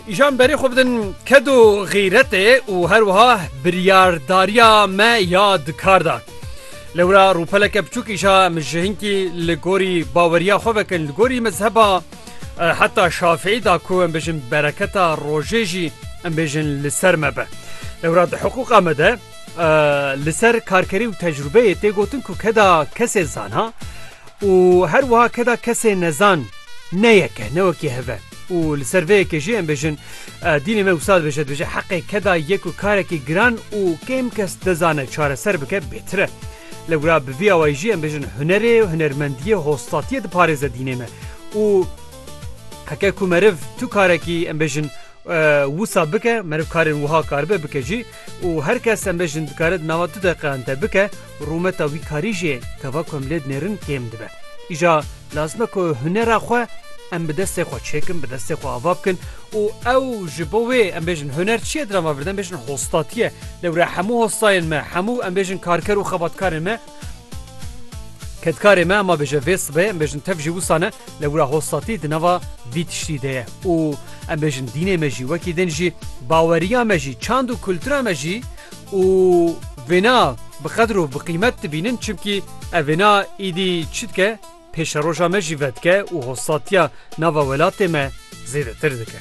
Îşan berê xwe bidin kedo xîretê û her wiha biryardariya me ya dikar da. Li wira rûpeleke biçûk îşa em ji hinkî li gorî baweriya xwe vekin li gorî mezheba e, heta şafeî da ku em bêjin bereketa rojê jî em bêjin li ser me be. Li wira di hiqûqa me de e, li ser karkerî û tecrûbeyê tê gotin ku keda kesê zana Û her wiha keda kesê nezan ne yeke ne wekî hev e. Û li ser vê yekê jî em bêjin dînê me wisa dibêje, dibêje heqê keda yek û karekî giran û kêm kes dizane çareser bike bêtir e. Lewra bi vî awayî jî em bêjin hunerê, hunermendiyê, hostatiyê diparêze dînê me. Û heke ku meriv tu karekî em bêjin wisa bike, meriv karên wiha karibe bike jî, Û her kes em bêjin dikare di nava du deqeyan de bike, rûmeta wî karî jî gava ku em lê dinêrin kêm dibe. Îja lazim e ku hunera xwe em bi destê xwe çêkin, bi destê xwe ava bikin û ew ji bo wê em bêjin huner çi ye di nava vir de em bêjin hostatî ye. Lewre hemû hostayên me, hemû em bêjin karker û xebatkarên me, Kedkarê me ma bêje vê sibê em bêjin tev jî wisa ne le wira hostatî di nava vî tiştî de ye û em bêjin dînê me jî wekî din jî baweriya me jî çand û kultura me jî û vêna bi qedir û bi qîmet dibînin çimkî ev vêna îdî çi dike Pêşeroja me jî vedike û hostatiya nava welatê me zêdetir dike.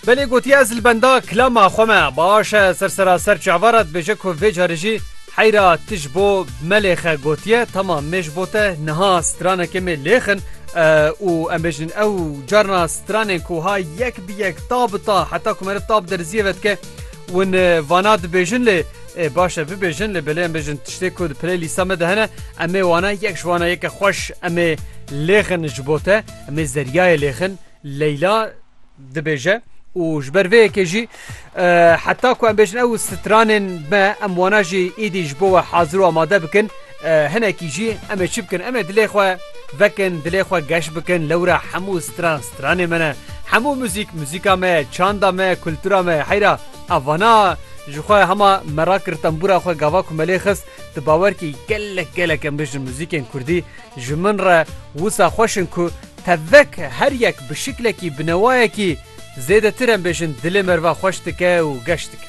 Belê gotiye ez li benda kilama xwe me baş e ser seraser çava re dibêje ku vê carê jî heyra tu ji bo melêxe gotiye tama me ji bo te niha stranekê me lêxin û em bêjin ew carna stranên ku ha yek bi yek ta bi ta heta ku meriv ta bi derziyê ve dike win vana dibêjin lê ê baş e bibêjin lê belê em bêjin tiştê ku di pilê lîsta me de hene em ê wana yek ji wana yeke xweş em ê lêxin ji bo te em ê zeryayê lêxin leyla dibêje û ji ber vê yekê jî heta ku em bêjin ew stranên me em wana jî êdî ji bo we hazir û amade bikin Hinekî jî em ê çi bikin? Em ê dilê xwe vekin, dilê xwe geş bikin. Lewra hemû stran stranê me ne. Hemû muzîk muzîka me ye, çanda me ye, kultura me ye. Heyra ev vana ji xwe hema me rakir tembûra xwe gava ku me lê xist tu bawer kî gelek gelek em bijin muzîkên kurdî ji min re wisa xweş in ku tevek her yek bi şiklekî bi newayekî zêdetir em bêjin dilê merva xweş dike û geş dike.